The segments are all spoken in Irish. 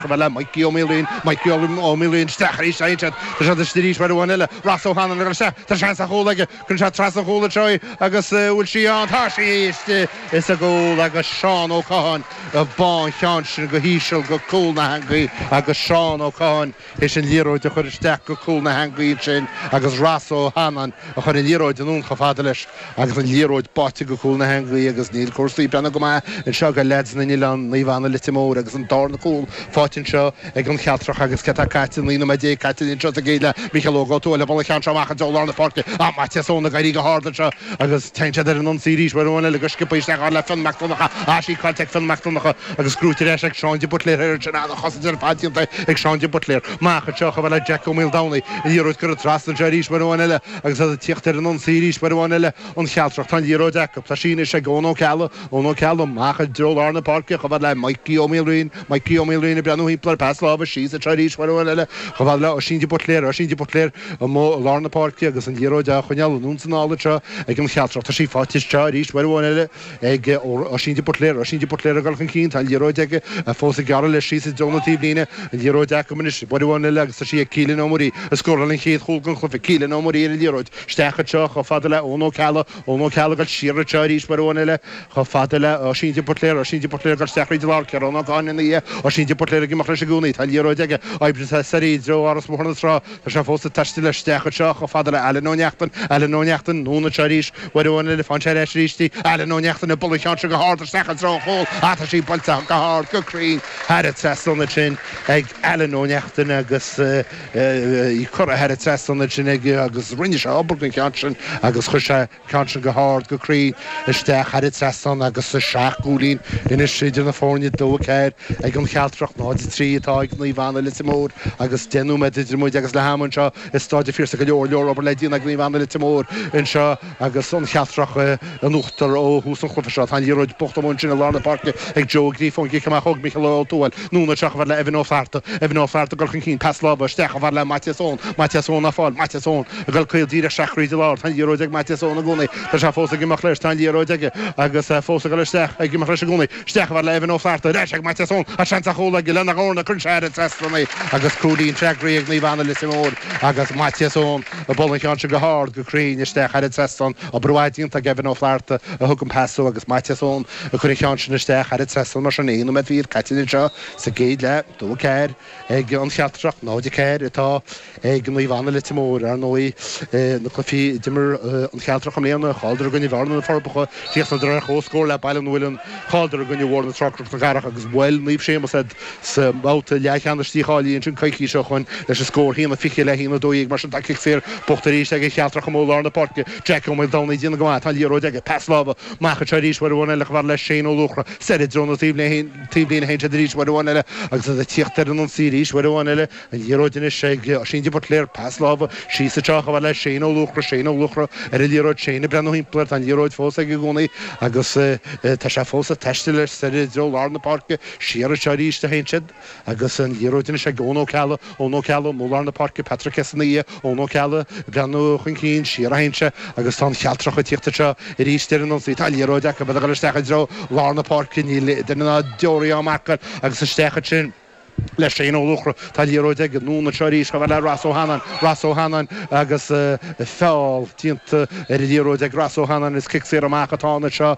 Chomh fada le Mikey Ó Maoilín, Mikey Ó Maoilín, Isteach arís anseo. Tá siad istigh arís uair amháin eile. Ross Ó Hanlon ag dul isteach. Tá seans ar chúl aige. Cuireann sé trasna an chúil anseo í agus an bhfuil sí ann? Tá sí istigh is i gcúl agus Seán Ó Catháin a bhuail an ceann sin go híseal go cúl na heangaí agus Seán Ó Catháin théis an liathróid a chur isteach go cúl na heangaí ansin agus Ross Ó Hanlon a chuir an liathróid anonn chomh fada leis Agus an liathróid báite go cúl na heangaí agus níl cúrsaí ag breathnú go maith anseo ag leaids na nOileán, Naomh Anna Leitir Móir agus an darna cúl faighte anseo ag an Chealtrach agus céard atá caite, 19 nóiméad caite anseo sa gcéad leath, Mícheál Óg Ó Tuathail ag bualadh an ceann seo amach i dtreo lár na páirce ach Maitias Eoin ag éirí go hard anseo agus téann siad ar an ionsaí arís, uair amháin eile go sciobtha isteach chomh fada le Fionn Mac Donnacha ach sí caillte ag Fionn Mac Donnacha agus gnóite ar ais ag Seán de Buitléar thoir ansin an-chosaint ar fad déanta ag Seán de Buitléar. Amach anseo chomh fada le Jack Ó Maoldomhnaigh, an liathróid curtha trasna anseo arís uair amháin eile Agus iad ag tíocht ar an ionsaí arís uair amháin eile an Chealtrach, tá an liathróid acu, tá sí anois ag Eoin Ó Ceallaigh, Eoin Ó Ceallaigh amach i dtreo lár na páirce, chomh fada le Mikey Ó Maoilriain, Mikey Ó Maoilriain ag breathnú thimpeall air, pas láimhe síos anseo arís uair amháin eile, chomh fada le Oisín de Buitléar, Oisín de Buitléar amuigh i lár na páirce agus an liathróid á choinneáil anonn 's anall anseo ag an Chealtrach, tá sí faighte anseo arís uair amháin eile, ag Oisín de Buitléar. Oisín de Buitléar ag dul chun cinn. Tá an liathróid aige fós ag gearradh leis síos i dtreo na taobhlíne. An liathróid acu anois uair amháin eile agus tá sí ag Keelan Ó Muirí, a scóráil an chéad chúl den chluiche. Keelan Ó Muirí ar an liathróid. Isteach anseo chomh fada le Eoin Ó Ceallaigh. Eoin Ó Ceallaigh ag dul siar anseo arís uair amháin eile chomh fada le Oisín de Buitléar. Oisín de Buitléar ag dul isteach tríd an lár. Ciarán Ó Gáinne ina dhiaidh. Oisín de Buitléar ag imeacht leis i gcónaí. Tá an liathróid aige. Ag oibriú soir i dtreo Áras Bhóthar na Trá. Tá sé fós ag taisteal isteach anseo chomh fada le Ailean Ó Neachtain, Ailean Ó Neachtain, anonn anseo arís uair amháin eile, faigheann sé ar ais arís í, Ailean Ó Neachtain, ag bualadh an ceann seo go hard isteach i dtreo an chúil, ah, tá sí buailte go hard, go cruinn, thar an trasnán ansin ag Ailean Ó Neachtain agus, eh, í curtha thar an trasnán ansin aige, agus rinne sé an-obair den cheann sin agus chuir sé. An ceann sin go hard, go cruinn, isteach thar an trasnán agus tá seacht gcúilín anois idir na foirne 2-4 ag an Chealtrach, 0-3 atá ag Naomh Anna, Leitir Móir agus deich nóiméad idir muid agus leath ama anseo i Stáid an Phiarsaigh. Go leor, leor obair le déanamh ag Naomh Anna, Leitir Móir anseo agus an Chealtrach in uachtar ó thús an chluiche seo. Tá an liathróid buachta amuigh ansin i lár na páirce ag Joe Ó Gríofa ón gcic amach ó Mhícheál Ó Tuathail Anonn anseo chomh fada le Evan Ó Flatharta, Evan Ó Flatharta ag dul chun cinn, pas láimhe isteach chomh fada le Maitias Eoin, Maitias Eoin á fáil, Maitias Eoin ag dul caol díreach isteach thríd an lár, tá an liathróid ag Maitias Eoin i gcónaí, tá sé fós ag imeacht leis, tá an liathróid aige agus é fós ag dul isteach, ag imeacht leis i gcónaí, isteach chomh fada le Evan Ó Flatharta, ar ais ag Maitias Eoin, tá seans ar chúl aige, lena dhorn cuireann sé thar an trasnán í agus cúilín freagraí ag Naomh Anna Leitir Móir agus Maitias Eoin a bhuail an ceann sin go hard, go cruinn isteach thar an trasnán, obair mhaith déanta ag Evan Ó Flatharta a thug an pas dó agus Maitias Eoin Ag cur an ceann sin isteach thar an trasnán mar sin, aon nóiméad fichead caite anseo sa gcéad leath, 2, 4 ag An Chealtrach, 0, 4 atá ag Naomh Anna, Leitir Móir. Ar ndóigh, na cluichí a d'imir An Chealtrach i mbliana, chailleadar i gcoinne Bhearna, Na Forbacha, chríochnaíodar ar chomhscór le Baile an Mhuilinn, chailleadar i gcoinne Bhóthar na Trá, Cnoc na Cathrach agus bhuail Naomh Séamus iad sa mbabhta leathcheannais dícháilithe ansin coicís ó shoin leis an scór haon a 20 le haon a 12. Mar sin tá cic saor buaite arís ag An Chealtrach amuigh i lár na páirce, Jack Ó Maoldomhnaigh déanamh go maith, tá an liathróid aige, pas láimhe Amach anseo arís uair amháin eile chomh fada le Shane Ó Luachra, Soir i dtreo na taobhlíne, a théann siad arís uair amháin eile, agus iad ag tíocht ar an ionsaí arís uair amháin eile, An Liathróid Anois ag Oisín de Buitléar, Pas láimhe síos anseo chomh fada le Shane Ó Luachra, Shane Ó Luachra ar an liathróid, Shane ag breathnú thimpeall air, Tá an liathróid fós aige i gcónaí agus tá sé fós ag taisteal leis soir i dtreo lár na páirce, Siar anseo arís a théann siad. Agus an liathróid anois ag Eoin Ó Ceallaigh, Eoin Ó Ceallaigh amuigh i lár na páirce, Patrick Hession ina dhiaidh, Eoin Ó Ceallaigh ag breathnú chun cinn, siar a théann sé agus tá an Chealtrach ag tíocht anseo arís ar an ionsaí, tá an liathróid acu, iad ag dul isteach i dtreo lár na páirce, níl duine ná deoraí á mharcáil agus isteach ansin le Shane Ó Luachra, tá an liathróid aige, anonn anseo arís chomh fada le Ross Ó hAnnáin, Ross Ó hAnnáin agus feall déanta ar an liathróid ag Ross Ó hAnnáin is cic saor amach atá ann anseo.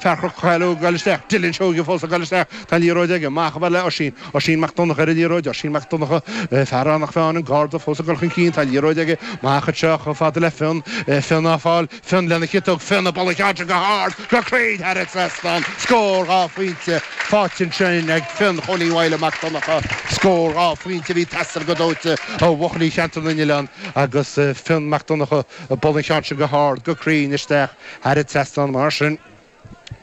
Fear Leitir Calaidh ag dul isteach, Dillon Seoighe fós ag dul isteach, tá an liathróid aige, amach chomh fada le Oisín, Oisín Mac Donnacha ar an liathróid, Oisín Mac Donnacha, fear Eanach Mheáin, an Garda fós ag dul chun cinn, tá an liathróid aige, amach anseo, chomh fada le Fionn, Fionn á fáil, Fionn lena chiotóg, Fionn ag bualadh an ceann sin go hard, go cruinn thar an trasnán, scór, dhá phointe faighte ansin ag Fionn Chóilín Mhaidhle Mac Donnacha, scór, dhá phointe, a bhí ag teastáil go dóite ó bhuachaillí Cheantar na nOileán agus Fionn Mac Donnacha ag bualadh an ceann sin go hard, go cruinn isteach. Thar an trasnán mar sin,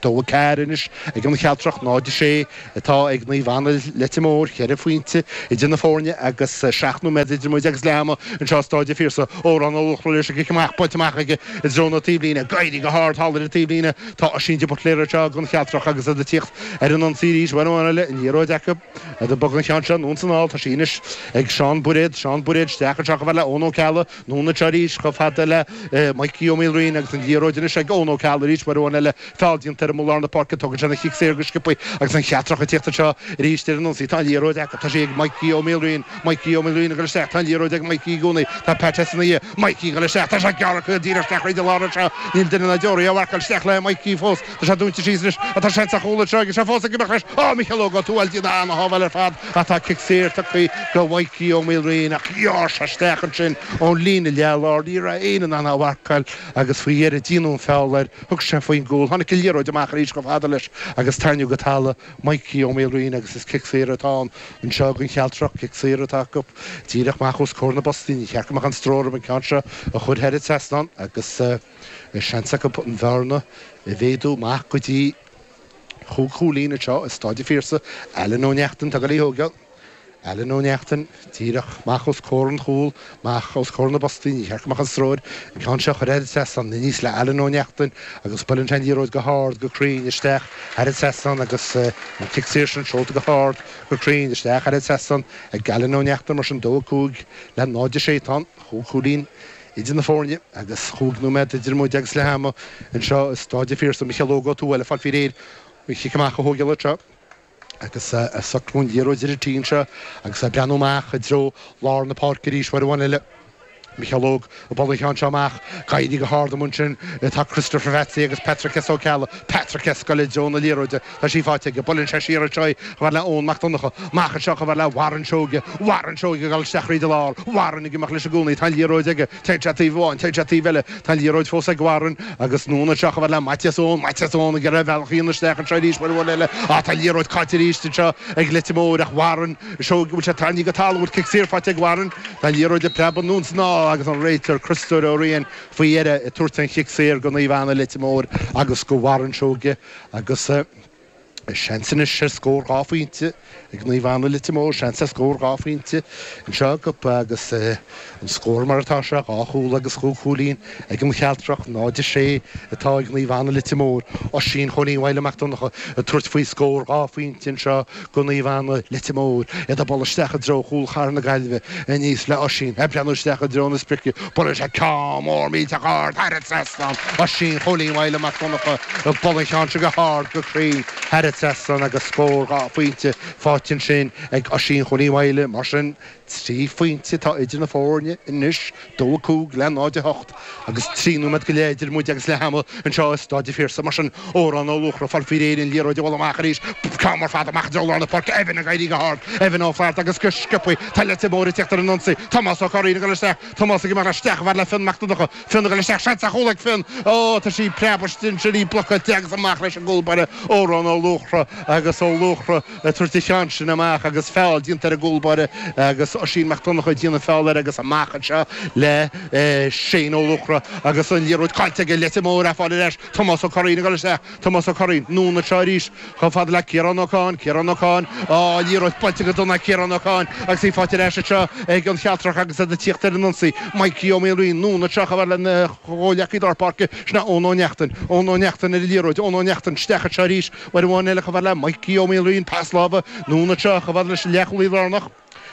2-4 anois ag an Chealtrach, 0-6 atá ag Naomh Anna, Leitir Móir, cheithre phointe idir na foirne agus seacht nóiméad idir muid agus leath ama anseo i Stáid an Phiarsaigh. Odhrán Ó Luachra leis an gcic amach, buailte amach aige i dtreo na taobhlíne, ag éirí go hard thall ar an taobhlíne. Tá Oisín de Buitléar anseo ag an Chealtrach agus iad ag tíocht ar an ionsaí arís uair amháin eile, an liathróid acu agus iad ag bogadh an ceann seo anonn is anall. Tá sí anois ag Seán Bairéad, Seán Bairéad isteach anseo chomh fada le Eoin Ó Ceallaigh, Anonn leis arís chomh fada le Micí Ó Maoilraoin agus an liathróid anois ag Eoin Ó Ceallaigh arís uair amháin eile, feall déanta air amuigh i lár na páirce. Tógann sé an cic saor go sciobtha agus an Chealtrach ag teacht anseo arís ar an ionsaí. Tá an liathróid acu. Tá sí ag Micí Ó Maoilraoin. Micí Ó Maoilraoin ag dul isteach. Tá an liathróid ag Micí i gcónaí. Tá Pat Hession ina dhiaidh. Micí ag dul isteach. Tá sé ag gearradh díreach isteach fríd an lár anseo. Níl duine ná deoraí á mharcáil. Isteach le Micí fós. Tá sé dúnta síos anois. Tá sé sa chúlra anseo agus é fós ag imeacht leis. Ó, Micheál Óg Ó Tuathail ag déanamh an-shábháil ar fad ach tá cic saor tugtha do Mhikey Ó Maoilraoin ach ghearr sé isteach ansin ón líne leath lár, ní raibh éinne in ann a mharcáil agus faoi dheireadh déanadh an feall air, thug sé faoin gcúl, tháinig an liathróid amach arís chomh fada leis agus tarraingíodh go talamh Mikey Ó Maoilraoin agus is cic saor atá ann anseo don Chealtrach, cic saor atá acu díreach amach os comhair na bpostaí. Níor cheart go mbeadh aon stró orthu an ceann seo a chur thar an trasnán agus. Bhí seans acu an bhearna a mhéadú amach go dtí chúig chúilín anseo i Stáid an Phiarsaigh, Alan Ó Neachtain, atá ag goil á thógáil, Alan Ó Neachtain, díreach amach os comhair an chúl, amach os comhair na bpostaí, níor cheart go mbeadh aon stró air an ceann seo a chur thar an trasnán, aníos le Alan Ó Neachtain agus buaileann sé an liathróid go hard, go cruinn, isteach thar an trasnán agus an cic saor sin seolta go hard, go cruinn, isteach thar an trasnán ag Alan Ó Neachtain, mar sin dó a cúig le náid a sé tá an chúig chúilín. idir na foirne agus chúig nóiméad idir muid agus leath ama anseo i Stáid an Phiarsaigh. Micheál Óg Ó Tuathail ag fáil faoi réir an chic amach a thógáil anseo agus ag socrú an liathróid ar an tí anseo agus é ag breathnú amach i dtreo lár na páirce arís uair amháin eile. Micheál Óg ag bualadh an cheann seo amach, ag éirí go hard amuigh ansin atá Christopher Pheatsaí agus Patrick S Ó Ceallaigh, Patrick S ag goil i dtreo na liathróide Tá sí faighte aige. Buaileann sé siar anseo í, chomh fada le Eoin Mac Donnacha. Amach anseo, chomh fada le Warren Seoige. Warren Seoige ag dul isteach thríd an lár. Warren ag imeacht leis i gcónaí. Tá an liathróid aige. Téann sé taobh amháin. Téann sé taobh eile. Tá an liathróid fós ag Warren. Agus anonn anseo, chomh fada le Maitias Eoin. Maitias Eoin ag iarraidh a bhealach a dhéanamh isteach anseo arís. Uair amháin eile. Á, tá an liathróid caillte arís anseo ag Leitir Móir. Ach Warren Seoige, bhfuil sé tarraingthe go talamh? Bhfuil cic saor faighte ag Warren? Tá an liathróid ag preabadh anonn is anall agus an réiteoir, Criostóir Ó Riain, faoi dheireadh ag tabhairt an chic saor go Naomh Anna, Leitir Móir agus go Warren Seoige. Agus seans anois ar scór dhá phointe ag Naomh Anna, Leitir Móir, seans ar scór dhá phointe anseo acu agus an scór mar atá sé, dhá chúl agus chúig chúilín ag an Chealtrach. 0-6 atá ag Naomh Anna, Leitir Móir. Oisín Chóilín Mhaidhle Mac Donncha ag tabhairt faoi scór dhá phointe anseo. go Naomh Anna, Leitir Móir, iad ag bualadh isteach i dtreo chúl chathair na Gaillimhe aníos le Oisín ag breathnú isteach i dtreo na sprice, buaileann sé ceann mór millteach ard thar an trasnán, Oisín Chóilín Mhaidhle Mac Donncha ag bualadh an cheann seo go hard go cruinn thar an trasnán agus scór dhá phointe faighte ansin ag Oisín Chóilín Mhaidhle. Mar sin. Trí phointe atá idir na foirne anois, dó a cúig le náid a hocht, agus trí nóiméad go leith idir muid agus leath ama anseo i Stáid an Phiarsaigh. Mar sin, Odhrán Ó Luachra, ag fáil faoi réir an liathróid a bhualadh amach arís, ceann mór fada amach i dtreo lár na páirce, Evan ag éirí go hard, Evan Ó Flatharta agus go sciobthaí tá Leitir Móir ag tíocht ar an ionsaí, Tomás Ó Curraoin ag dul isteach, Tomás ag imeacht isteach chomh fada le Fionn Mac Donnacha, Fionn ag dul isteach, seans ar chúl ag Fionn, oh tá sí ag preabadh ansin, í blocáilte agus amach leis an gcúlbáire Odhrán Ó Luachra agus Ó Luachra, ag tabhairt an cheann sin amach agus feall déanta ar an gcúlbáire agus Oisín Mac Donnacha ag déanamh feall air agus amach anseo le Seán Ó Luachra agus an liathróid caillte aige, Leitir Móir á fáil ar ais, Tomás Ó Curraoin ag dul isteach, Tomás Ó Curraoin, anonn anseo arís chomh fada le Ciarán Ó Catháin, Ciarán Ó Catháin, á, liathróid buailte go dona ag Ciarán Ó Catháin agus í faighte ar ais anseo ag an Chealtrach agus iad ag tíocht ar an ionsaí, Maidhcí Ó Maolraoin, anonn anseo chomh fada lena chomhghleacaí lár páirce, sin é Eoin Ó Neachtain, Eoin Ó Neachtain ar an liathróid, Eoin Ó Neachtain isteach anseo arís. Uair amháin eile, chomh fada le Mikey Ó Maoilriain, an pas láimhe anonn anseo, chomh fada leis an leathchúlaí lárnach,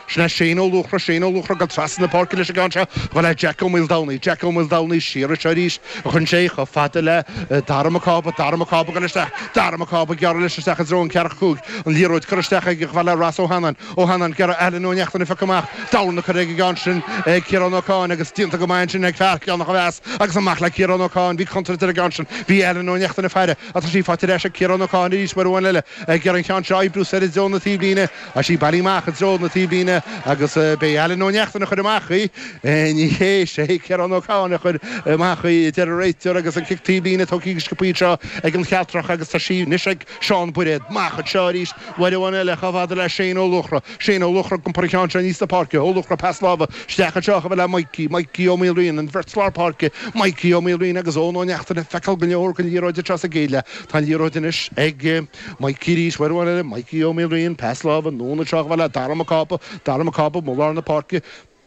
sin é Shane Ó Luachra, Shane Ó Luachra ag dul trasna na páirce leis an gceann seo, chomh fada le Jack Ó Maoldomhnaigh, Jack Ó Maoldomhnaigh siar anseo arís, a chuireann sé chomh fada le Darragh Mac Cába, Darragh Mac Cába ag dul isteach, Darragh Mac Cába ag gearradh leis isteach i dtreo an ceathrach cúil, an liathróid curtha isteach aige, chomh fada le Ross Ó hAnnáin, Ó hAnnáin ag gearradh, Alan Ó Neachtain á piocadh amach, dorn curtha ar an gceann sin ag Ciarán Ó Catháin agus déanta go maith ansin ag fear Cheatharlach a mheas agus amach le Ciarán Ó Catháin, bhí contúirt ar an gceann sin, bhí Alan Ó Neachtain ag faire. Tá sí faighte ar ais ag Ciarán Ó Catháin arís uair amháin eile ag iarraidh an ceann seo a oibriú soir i dtreo na taobhlíne tá sí bailithe amach i dtreo na taobhlíne agus ab é Alan Ó Neachtain a chuir amach í. Ní hé is é Ciarán Ó Catháin a chuir amach í, a deir an réiteoir agus an cic taobhlíne tógtha go sciobtha anseo ag an gCealtrach agus tá sí anois ag Seán Bairéad amach anseo arís uair amháin eile chomh fada le Shane Ó Luachra. Shane Ó Luachra, ag iompar an cheann seo aníos na páirce, Ó Luachra pas láimhe isteach anseo chomh fada le Mikey, Mikey Ó Maoilriain, an bheirt lár páirce, Mikey Ó Maoilriain agus Eoin Ó Neachtain ag feiceáil go leor den liathróid tar éis a chéile. Tá an liathróid anois ag Mikey arís, uair amháin eile, Mikey Ó Maoilriain, pas láimhe anonn anseo chomh fada le Darragh Mac Cába, Darragh Mac Cába, amuigh i lár na páirce,